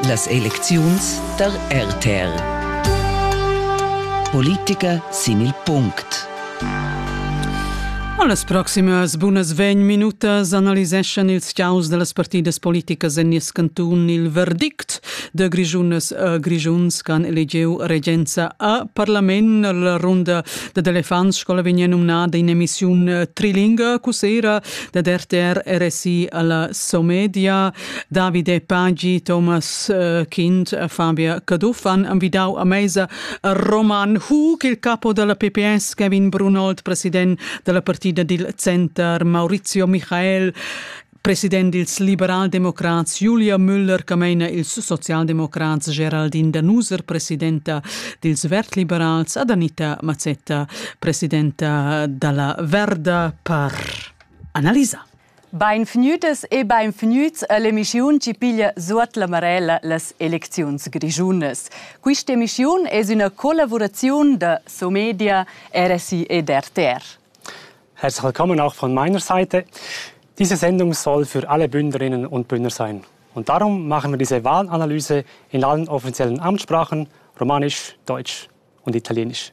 Las elecziuns tar RTR. Politica sin il punct. A las proximas bunas vegn minutas analiseschan ils chaus da las partidas politicas en nies cantun il verdict de Grischunas a Grischuns che han elegiu regenza a parlament. La runda da elefants scola vegn numnada in emissiun trilinga. Cusera dad RTR RSI alla Somedia, Davide Paggi, Thomas äh, Kind, Fabia Caduffan han vidau a mesa Roman Hug, il capo della PPS, Kevin Brunold, president della partita dil Center, Maurizio Michael, president dils liberaldemocrats Julia Müller-Cameina, ils socialdemocrats Geraldine Danuser, presidenta dils vertliberals, ad Anita Mazzetta, presidenta dalla Verda per analisa. Beinvgnütes e beinvgnüts all'emissiun chi piglia suot la marella las elecziuns grischunas. Quista emissiun es üna collavuraziun da Somedia, RSI ed RTR. Herzlich willkommen auch von meiner Seite. Diese Sendung soll für alle Bündnerinnen und Bündner sein. Und darum machen wir diese Wahlanalyse in allen offiziellen Amtssprachen, Romanisch, Deutsch und Italienisch.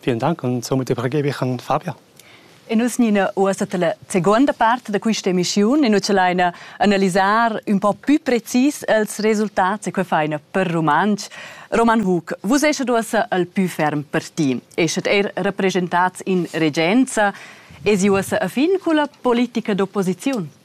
Vielen Dank und somit übergebe ich an Fabia. E nus nina uossa la seconda part da questa emissiun e nus laina analisar un po più precis els resultats e que faina per Romansch. Roman Hug, vus eschet uossa al più ferm parti, eschet er representats in regenza, es uossa a fin culla politica d'opposiziun?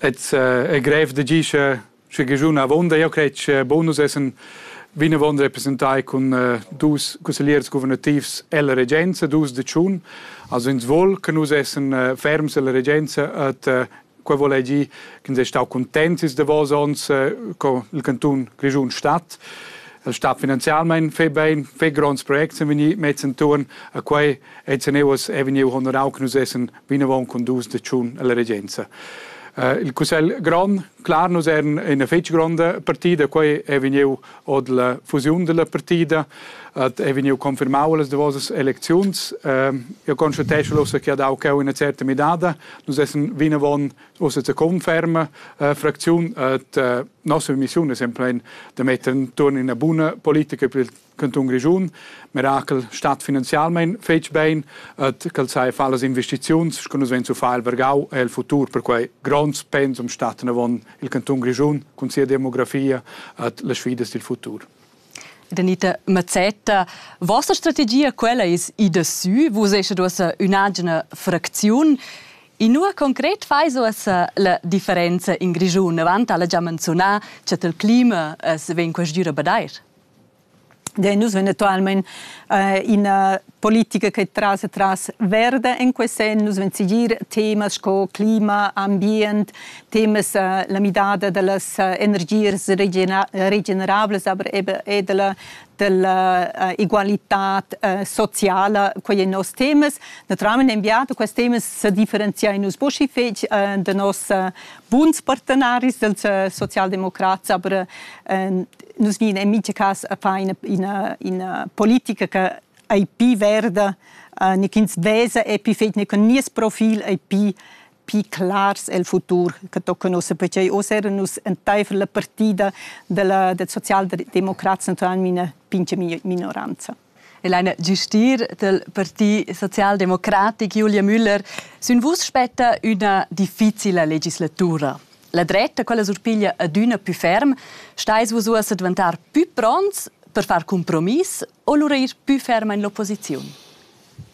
Et è grev da gir sche sche giun avonda io cret che bonus essen vinavon representai cun dus cussegliers guvernativs ella regenza, dus da tschun. Also ins vol che nus essen ferms ella regenza et quei vol ei gir ch'ins è stau contents ils davos onns co il canton Grischun stat. Il stat finanzialmein fe bein, fe gronds projects sind vegni mezz entuorn a quei et se neuos è vegniu honorau che nus essen vinavon cun dus de tschun ella regenza. Eh, il cussegl grond, clar, nus eran ina fetg gronda partida, quei è vegniu od la fusiun della partida, et è vegniu confirmau las davosas elecziuns. Eh, io constatesce ussa che ha dau cheu una certa midada, nus essen vinavon ussa zur conferma eh, fraktion, et eh, nostra missione è semplicemente da mettere intorno in una buona politica per il Cantun Grischun, Mirakel stat finanzialmein fetg bein et ch'el sai far las investiziuns sco nus vein zu far el Vergau e il futur per quei gronds pensum staten avon il Cantun Grischun cun sia demografia et las sfidas dil futur. Danita Mazzetta, vossa strategia quella eis ida sü, vus eschet uossa ün'agina fracziun. Inua concret fais uossa la differenza in Grischun? Avant ha'la già menziunà, cha il clima as vegn quest'üra a badair. Dein nus eventualmein äh, ina politica che trasa tras verde en quei senn, nus ven segir temas sco clima, ambient, temas äh, la midada dallas äh, energias regenerablas, aber eben e della della uh, egualitad uh, sociala, quei ein nos temas. Naturalmente enviato questi temas se differenziai nus posci fetg uh, de nos uh, buns partenaris dels uh, socialdemocrats, aber uh, nus ni in mica cas a fa ina, ina, ina politica che ei pi verda, uh, ne ins vesa e pi fet ne con nies profil ei pi pi clars el futur che toccano se perché o sera nus enteifer la partida della, del Sozialdemokraten tuan mina pinche minoranza. e leina giustir del Parti Socialdemocratic Julia Müller sün vus spetta üna difficila legislatura. La dretta, quella surpiglia adüna più ferm, stais vus uossa diventar più pronts per far compromiss o lura ir più ferm in l'opposiziun?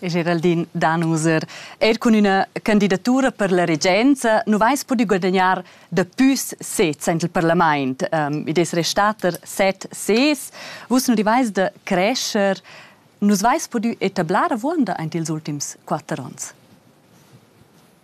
Geraldin Danuser, er cun üna candidatura per la regenza nu vais pudü guadagnar dapü sez sainza il parlamaint. Um, id es restater set sez. Vus nu rivais da crescher. Nus vais pudü etablar avuonda aint ils ultims quatter ons.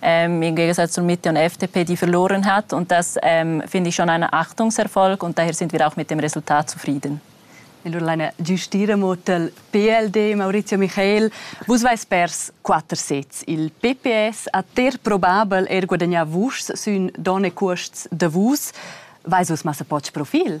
ähm, im Gegensatz zu Mitte und FDP, die verloren hat. Und das ähm, finde ich schon ein Achtungserfolg und daher sind wir auch mit dem Resultat zufrieden. Allora ein Gestierenmodell PLD, Maurizio Michel, vos vais pers quatter sez. Il PPS ha ter probabel er guadagnà vus sün donne cuosts de vus. Vais vos massa poch profil?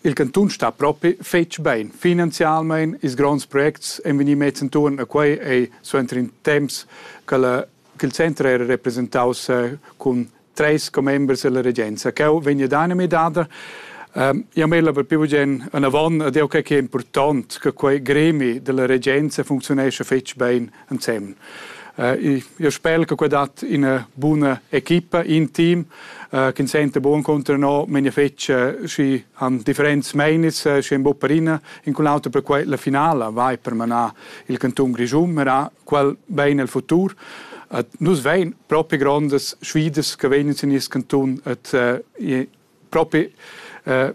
Il cantun sta propi fetg bein. Finanzialmein ils gronds projects ein vegni mets entuorn a quei ei suenter in temps che il center era representaus cun treis commembers dalla regenza. Cheu vegn ad anime dada. Io mela per più bugen anavon ad eo che è important che quei gremi della regenza funzionesce fetg bein ensemen. Äh, io spel che dat ina buna equipa, in team, äh, che sente buon contro no, men fec si han differents meinis, äh, si en bopperina, in quel auto per quel la finala vai per manar il canton Grischun, ma quel bene il futur. Äh, nus vein propri grandes sfidas che vegnan sin il canton et äh, propri äh,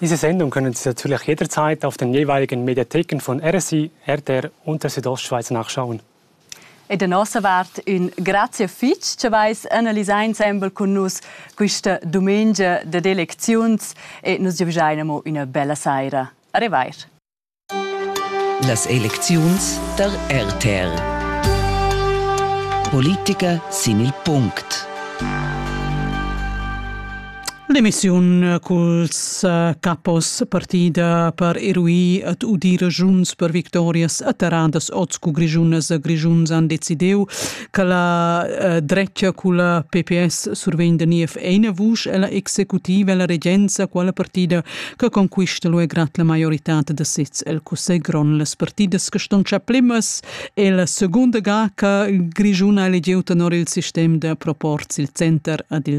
Diese Sendung können Sie natürlich jederzeit auf den jeweiligen Mediatheken von RSI, RTR und der Südostschweiz nachschauen. E da nossa vart ün grazie fitg che vais analisar ensemble con nus questa domenica de elecziuns e nos giavschein amo üna bella saira. Arrivair! Las elecziuns tar RTR. Politica sin il punct. L'emissiun culs eh, capos partida per erui et udi regiuns per victorias atterradas oz cu grischunas e grischuns han decidiu che la eh, dretga culla PPS survegn da niev eine vusch e la executiva e la regenza quella partida che conquista lu e grat la maiorità da sez el cussegl grond las partidas che ston cha plimas e la seconda ga che il Grigiun ha elegiu tenor il sistem da proporz il center ad il